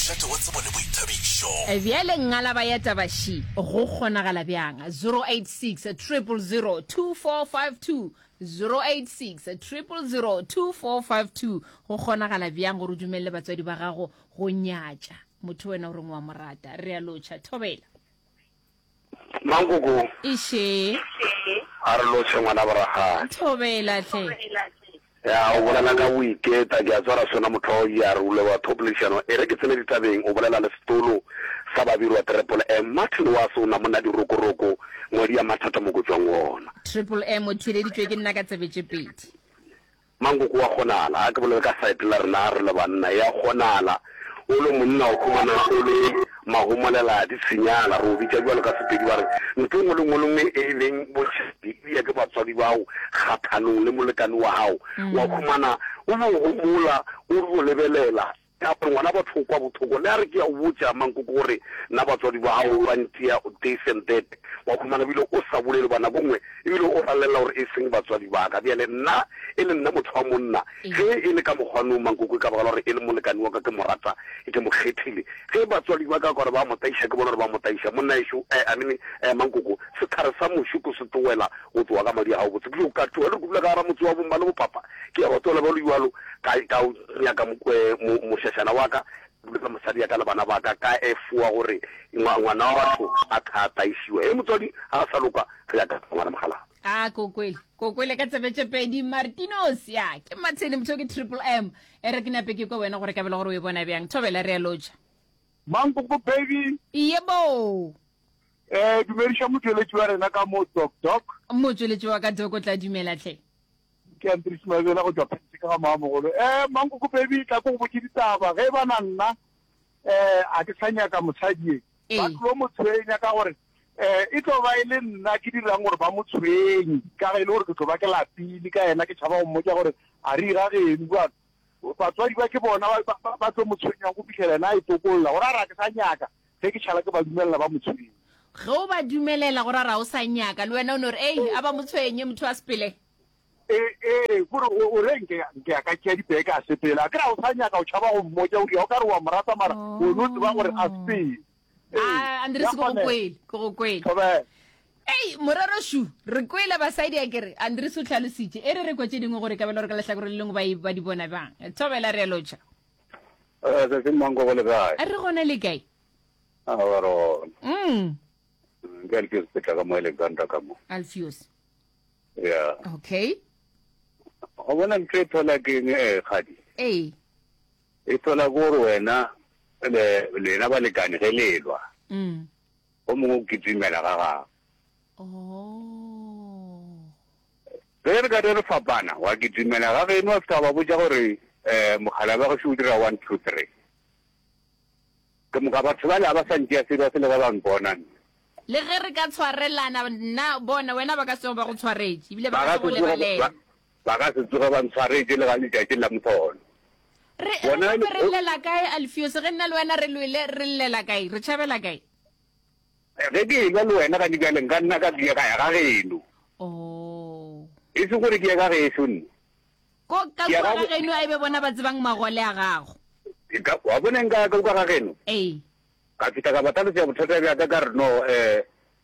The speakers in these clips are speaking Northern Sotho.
Tlhahlo wa tsebo le boithabišo. Bjale ngalaba ya taba xi go kgonagala bjang? 086 000 2452 086 000 2452 Go kgonagala bjang gore o dumelele batswadi ba gago go nyatša motho wena o reng o a mo rata? Re a lotšha. Thobela. Mankoko. Eiše. A re loše ngwana boragadi. Thobela hle. Ya o bolela ka go iketa ke a tswara sona motho wa ya rule wa thopolešano e re ke tsene ditabeng o bolela le setolo sa babirwa triple M Martin wa se o na monna dirokoroko ngwadi ya mathata mo go tswang gona. Triple M o theeleditšwe ke nna ka tsebe tše pedi. Mankoko wa kgonala, a ke bolele ka side la rena re le banna, ya kgonala o le monna wa khumana o le mahomolela di tshinyala, re o bitša bjalo ka Sepedi ba re ntho engwe le ngwe lengwe e leng bošedi e ya ke batswadi bao kgathanong le molekane wa hao wa khumana o bo homola o re o lebelela Ka gore ngwana batho o kwa bothoko, le a re ke a o botša mankoko gore na batswadi ba gago ba ntia this and that, wa khumana ebile o sa bolele goba nako nngwe ebile o ralelela gore e seng batswadi ba ka. Bjale nna e le nna motho wa monna, ge e le ka mokgwa noo mankoko e ka baka la gore e le molekane wa ka ke mo rata, ke mo kgethile. Ge batswadi ba ka gore ba mo tlaiša ke bona gore ba mo tlaiša. Monnaešo, eh, I mean, eh, mankoko, sehlare sa moši ko se tloela go tloga ka madi a gabotse. Bjoo ka tšhoga le re kupula ka gara motse wa bo mma le bo papa. Ke ya gotola bjalo bjalo, ka, ka o nyaka mo, eh, mo, mošašana wa ka, le mosadi ya ka le bana ba ka, ka efoa gore ngwa, ngwana wa batho a ka a taišiwa. Hee, motswadi, ga a sa loka, re ya ka ngwana mogala. A ke o kwele, ke o kwele ka tsebe tše pedi, Martinos. Ya, ke Martin, motho yo ke Triple M. E re ke nape ke kwe wena gore ka bele gore o e bona bjang. Thobela, re a lotšha. Mankoko baby. Yebo. Eh, dumediša motšweletši wa rena ka mo, Doc Doc. Motšweletši wa ka Doc o tla dumela hle. Ke Andries Maebela go tšwa Phantšhe ka ga Moamogolo. Eh, Mankoko baby, tla ko go botše ditaba. Ge e ba na nna, eh, a ke sa nyaka mosadi ye. Ee. Ba tlo mo tshwenya ka gore, eh, e tlo ba e le nna ke dirang gore ba mo tshwenye. Ka ge e le gore ke tlo ba ke lapile ka yena, ke tšhaba go mmotša gore a re irageng, o a Batswadi ba ke bona ba tlo mo tshwenyang go fihlela yena a e tokolla. Go ra ra ke sa nyaka ge ke šala ke ba dumelela ba mo tshwenye. Ge o ba dumelela go ra ra o sa nyaka le wena o no re ei a ba mo tshwenye motho wa sepele. Ee, ee, go re o re nke nke ya ka tšea dibeke a sepela. A ke ra o sa nyaka o tšhaba go mmotša o ria o ka re wa mo rata mara wena o tseba gore a sepele. Ah, Andres, ke go kwele, ke go kwele. Ei, morero shu, re kwele basadi a kere, Andres o tlhalositše, e re re kwa tše dingwe gore ka bela gore ka lehlakore le lengwe ba e ba di bona bang. Thobela re lotša. Eh, se se mang go go le kae? A re gona le kae? A ba re gona. Mm. mm ke Alfios Petla ka mo Alexandra ka mo. Alfios. Yeah. Okay. O bona ntho e thola ke eng eh, kgadi? Ee. Efela ke gore wena le lena balekane ge le elwa, go mongwe o kitimela ga gago. Ge re ka re re fapana, wa kitimela ga geno wa fihla wa ba botša gore, um mokgalabje gašo o dira one, two, three. Ke moka batho bale ga ba sa ntšea serious le ge ba mpona nna. Le ge re ka tshwarelana nna bona wena ba ka se tsoge ba go tshwaretše ebile ba ka se go lebalele. Ba ka se tsoge ba ntshwaretše le ka letšatši la mpholo. Re, re Bonang, gape re o- llela kae, Alfiose, ge nna le wena re lwele, re llela kae, re tšhabela kae? Ge ke e-lwa le wena gane bjale, nka nna ka diega ya ga geno. Oo. E se gore ke ye ka geso nna. Ko ka Ke a kua ga ga bo- geno a ebe bona ba tsebang magole a gago. Ke ka- Wa bona nka ka uka ga geno? Ee. Ka fihla ka ba tlhalosetša bothata bja ka ka re no, um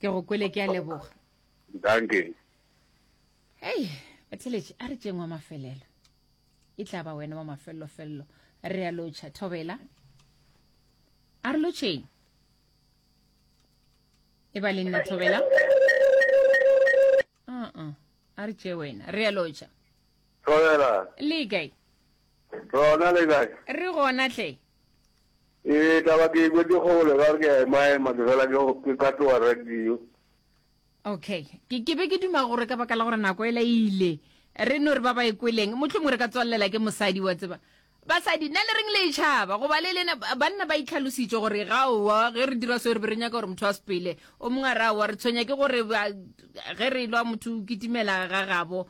ke go kwele ke a leboga danke hei batheletše a re tšeng wa mafelelo e tla ba wena wa mafellofello re a lotšha thobela a re lotšheng e ba le nna thobela uh-uh. a re tšee wena re a lotšha thobela le kae rona le kae re gona tle Ee, taba ke e kwetše kgole ka re ke a emaema ke fela ke ka tloa radio. Okay. Ke, ke be ke duma gore ka baka la gore nako e la ile re no re ba ba e kweleng motlho mongwe re ka tswallela ke mosadi wa tseba basadi na le reng le itšhaba goba le lena banna ba itlhalositše gore ga owa ge re dira seo re be re nyaka gore motho a sepele o mongwe a re aowa re tshwenya ke gore ge re lwa motho o kitimela ga gabo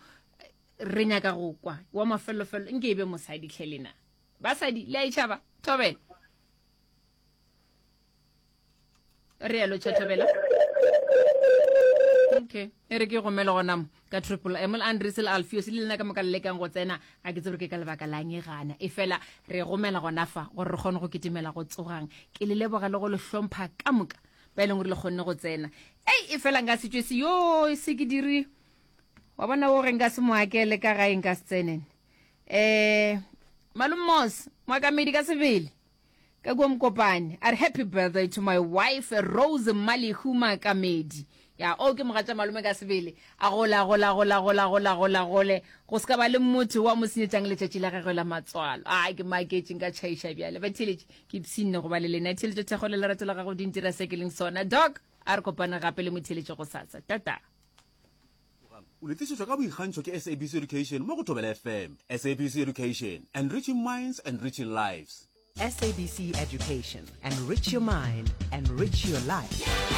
re nyaka go kwa wa mafelelofelo nke e be mosadi tlhelena Basadi, le a e tšhaba? Thobela. Re yalo tšha Thobela. Okay. E re ke gomele gona mo ka triple M le Andres le Alfios le lena ka moka le lekang go tsena ga ke tsebe ke ka lebaka la nge gana e fela re gomela gona fa gore re kgone go ketemela go tsogang ke le leboga le go le hlompha ka moka ba e leng gore le kgonne go tsena ei e fela nka setswe se yo se ke dire wa bona o re nka se moakele ka gae nka se tsenene eh malumos mwakamedi ka sebele ka kua mokopane a re happy birthday to my wife rose malihu makamedi ya o ke mogatša malome ka sebele a gola gola gola gola gola gola gole go se ka ba le motho wa mo senyetsang letšatši la gagwe la matswalo a ke maketšeng ka tšhaiša bjale ba theletše ke psinne go ba le lena theletše thekgo le lerato la gago dintira se ke leng sona doc a re kopane gape le motheletše go sasa tata O le tlišetšwa ka boikgantšho ke SABC Education mo go Thobela FM. SABC Education, enriching minds, enriching lives. SABC Education, enrich your mind, enrich your life.